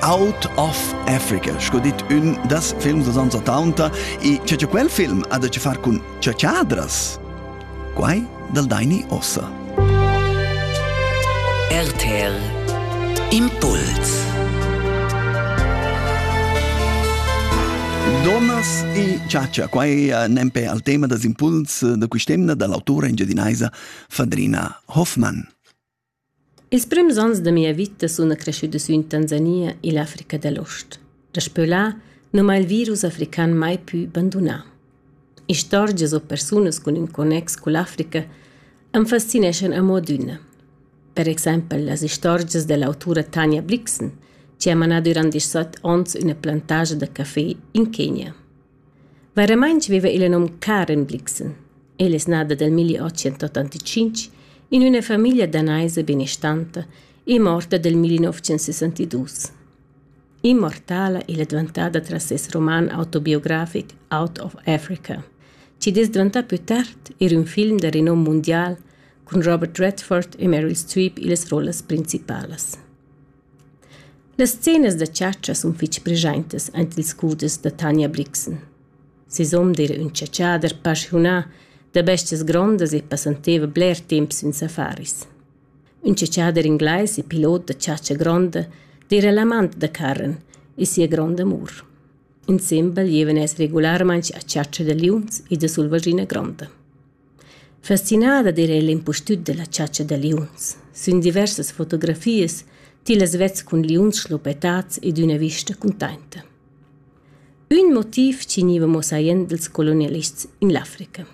Out of Africa, sco dit ün das films da ans 80, e che che quel film ha da che far cun ciacciadras? Quai dal Daini Ossa. RTL Impuls Donas e ciaccia, qua è nempe al tema des impuls da quest'emna dall'autore engiadinaisa Fadrina Hoffmann. Ils prims onns da mia vita suna creschüda sü in Tanzania illa Africa da l'Ost. Daspö là nu m'ha il virus african mai pü bandunà. Istorgias o persunas cun ün connex cull'Africa am fascineschan amo adüna. Per exaimpel las istorgias da l'autura Tania Blixen, chi ha manà dürant disat ons üna plantagia da café in Kenya. Vairamaing viva illa nom Karen Blixen. Ella es nata dal 1885 in üna famiglia danaisa benestanta e morta dal 1962. Immortala ella è dvantada tras ses roman autobiografic Out of Africa, chi'd es dvantà pü tard eir ün film da renom mundial cun Robert Redford e Meryl Streep illas rollas principalas. Las scenas da chatscha sun fich preschaintas aint ils scuders da Tanja Brixen. Sisum d'eira ün chatschader paschiunà da bestias grondas e passanteva bler temp sün safaris. Ün chatschader inglais e pilot da chatscha gronda d'eira l'amant da Karen e sia grond'amur. Insembel gievan els regularmaing a chatscha da liuns e da sulvaschina gronda. Fascinada d'eira ella impustüt dalla chatscha da liuns. Sün diversas fotografias tillas vets cun liuns schluppetats ed üna vista cuntainta. Ün motiv chi gniva mo saient dals colonialists in l'Africa.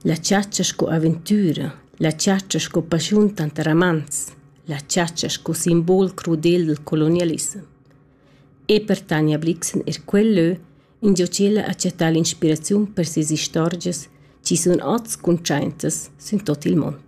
La chatscha sco aventüra, la chatscha sco paschiun tanter amants, la chatscha sco simbol crudel dal colonialissem. E per Tanja Blixen eir quel lö ingio ch'ella ha chattà l'inspiraziun per sias istorgias chi sun oz cuntschaintas sün tuot il mond.